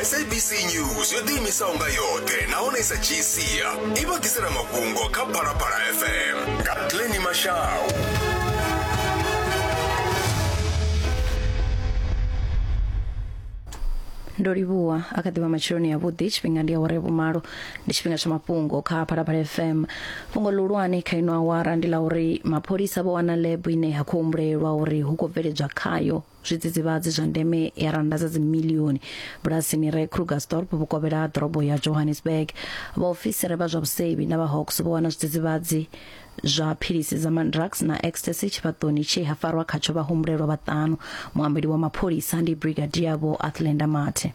sabc news yo ḓiimisaho nga yoṱhe nahone sa dzhii sia i vha ḓisela mafhungo kha phalaphala fm nga pleni mashau ndo livhuwa a kha ḓivha matsheloni ya vhuḓi tshifhinga ndi awara ya vhumalo ndi tshifhinga tsha mafhungo kha phalaphala fm fhungo ḽihulwane kha ino awara ndi ḽa uri mapholisa vho wana lab ine ya khou humbulelwa uri hu khou bveledzwa khayo zwidzidzivhadzi zwa ndeme ya rannda dza dzimilioni bulasini re krugersdorp vhukovhela ha ḓorobo ya johannesburg vhaofisiri vha zwa vhusevhi na vhahawks vho wana zwidzidzivhadzi zwa philisi dza mandrax na ecstasy tshifhaṱoni tshe ha farwa khatsho vhahumbulelwa vhaṱanu muambeli wa mapholisa ndi brigadier vho athlenda mathe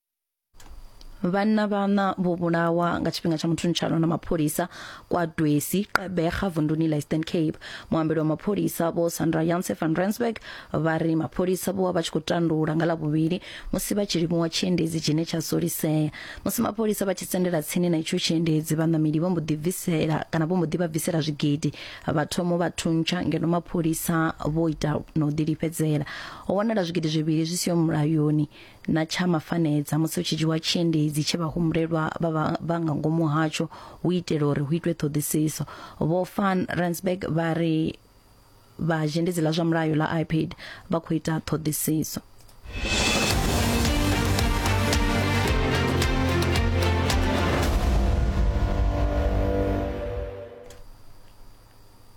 vhanna vhana vho vhulawa nga tshifhinga tsha muthuntshalwa na mapholisa kwa dwesi qebega vunduni la eastern cape muambeli wa mapholisa vho sandra yanse van rensburg vha ri mapholisa vho vha vha tshi khou tandula nga lavhuvhili musi vha tshi livhuwa tshiendedzi tshine tsha solisea musi mapholisa vha tshi sendela tsini na itsho tshiendedzi vhaṋameli vho mbo ḓi bvisela kana vho mbo ḓi vha bvisela zwigidi vha thomo vha thuntsha ngeno mapholisa vho ita na u ḓilifhedzela ho wanala zwigidi zwivhili zwi siho mulayoni na tsha mafanedza musi hu tshi dzhiwa tshiendedzi tshe vhahumbulelwa vha vha- vha nga ngomu hatsho hu itela uri hu itwe ṱhoḓisiso vho van rensburg vha ri vha zhendedzi ḽa zwa mulayo ḽa ipad vha khou ita ṱhoḓisiso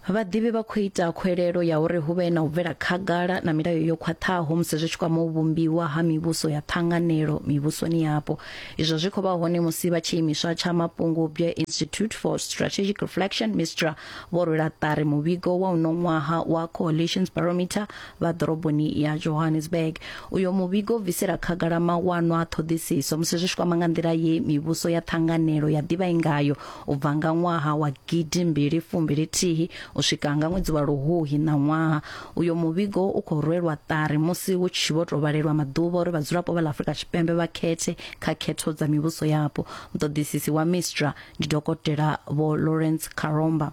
Vhaḓivhi vha khou ita khwelelo ya uri hu vhe na u bvela khagala na milayo yo khwaṱhaho musi zwi tshi kwama u vhumbiwa ha mivhuso ya ṱhanganelo mivhusoni yapo. Izwo zwi khou vha hone musi vha tshiimiswa tsha mafhungo-bwye Institute for Strategic Reflection, MISTRA, vho rwela ṱari muvhigo wa uno ṅwaha wa Coalitions Barometer vha ḓoroboni ya Johannesburg. Uyo muvhigo u bvisela khagala mawanwa a ṱhoḓisiso musi zwi tshi kwama nga nḓila ye mivhuso ya ṱhanganelo ya ḓivha i ngayo u bva nga ṅwaha wa gidi mbili fumbili thihi u swika nga ṅwedzi wa luhuhi na ṅwaha uyo muvhigo u khou rwelwa ṱari musi hu tshi vho tou vhalelwa maḓuvha uri vhadzulapo vha ḽa afurika tshipembe vha khethe kha khetho dza mivhuso yapo muṱoḓisisi wa mistra ndi dokotela vho lawrence karomba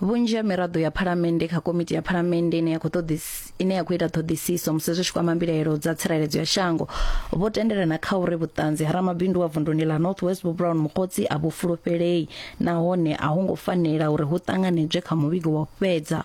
vhunzhi ha miraḓo ya phalamennde kha komiti ya phalamennde ine ya khou ṱoḓis- ine ya khou ita ṱhoḓisiso musi zwi tshi kwama mbilaelo dza tsireledzo ya shango vho tendelana kha uri vhuṱanzi ha ramabindu wa vunduni ḽa north west vho brown mukotsi a vhu fulufhelei nahone a ho ngo fanela uri hu ṱanganedzwe kha muvhigo wa u fhedza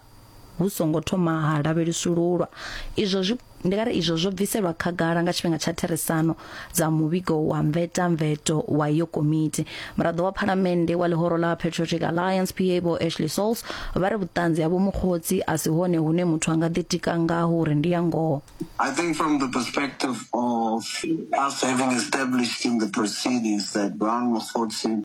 hu songo thoma ha lavhelesululwa izwo zwi Ndi nga ri izwo zwo bviselwa khagala nga tshifhinga tsha therisano dza muvhigo wa mvetamveto wa iyo komiti. Muraḓo wa Phalamennde wa ḽihoro ḽa Patriotic Alliance PA Vho Ashley Sauls vha ri vhuṱanzi ha Vho Mokgotsi a si hone hune muthu a nga ḓitika ngaho uri ndi ya ngoho. I think from the perspective of us having established in the proceedings that Brown Mokgotsi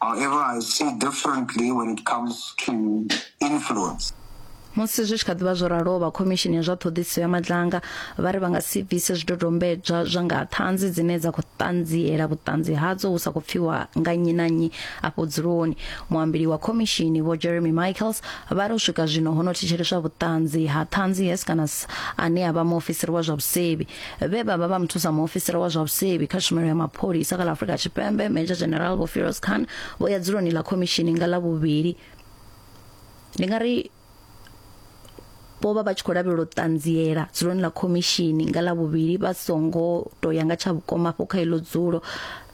However, I see differently when it comes to influence. Musi zwi tshi kha ḓivha zwo raloho, vha Khomishini ya zwa Ṱhoḓisiso ya Matlanga vha ri vha nga si bvise zwidodombedzwa zwa nga ha ṱhanzi dzine dza khou ṱanziela vhuṱanzi hadzo hu sa khou pfiwa nga nnyi na nnyi afho dzuloni. Muambeli wa khomishini Vho Jeremy Michaels vha ri u swika zwino ho no thetsheleswa vhuṱanzi ha ṱhanzi Heskanus ane a vha muofisiri wa zwa vhusevhi. vhe vha vha vha muthusa muofisiri wa zwa vhusevhi kha tshumelo ya mapholisa kha ḽa afurika tshipembe major general vho firoz khan vho ya dzuloni ḽa khomishini nga ḽa vhuvhili ndi nga ri vho vha vha tshi khou lavhelela u ṱanziela dzuloni ḽa khomishini nga ḽa vhuvhili vha songo to ya nga tsha vhukoma afho kha iḽo dzulo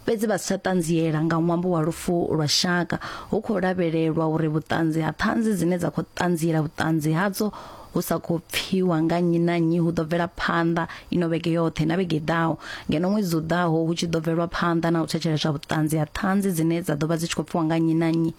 fhedzi vha si tsha ṱanziela nga ṅwambo wa lufu lwa shaka hu khou lavhelelwa uri vhuṱanzi ha ṱhanzi dzine dza khou ṱanziela vhuṱanzi hadzo hu sa khou pfiwa nga nnyi na nnyi hu ḓo bvela phanḓa ino vhege yoṱhe na vhege ḓaho ngeno ṅwedzi u ḓaho hu tshi ḓo bvelwa phanḓa na u thetsheleswa vhuṱanzi ha ṱhanzi dzine dza ḓo vha dzi tshi khou pfiwa nga nnyi na nnyi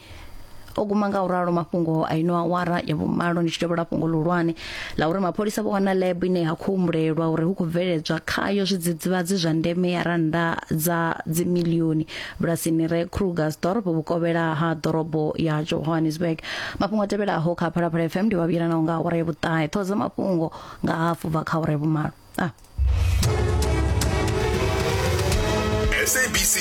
o guma nga u ralo mafhungo a ino awara ya vhumalo ndi tshi tevhela fhungo ḽihulwane ḽa uri mapholisa vho wana lab ine ya khou humbulelwa uri hu khou bveledzwa khayo zwidzidzivhadzi zwa ndeme ya rannda dza dzimilioni bulasini re krugersdorp vhukovhela ha ḓorobo ya johannesburg mafhungo a tevhelaho kha phalaphala fm ndi vhavhuyelanaho nga awara ya vhuṱahe ṱhoho dza mafhungo nga hafu bva kha awara ya vhumalo ah. sabc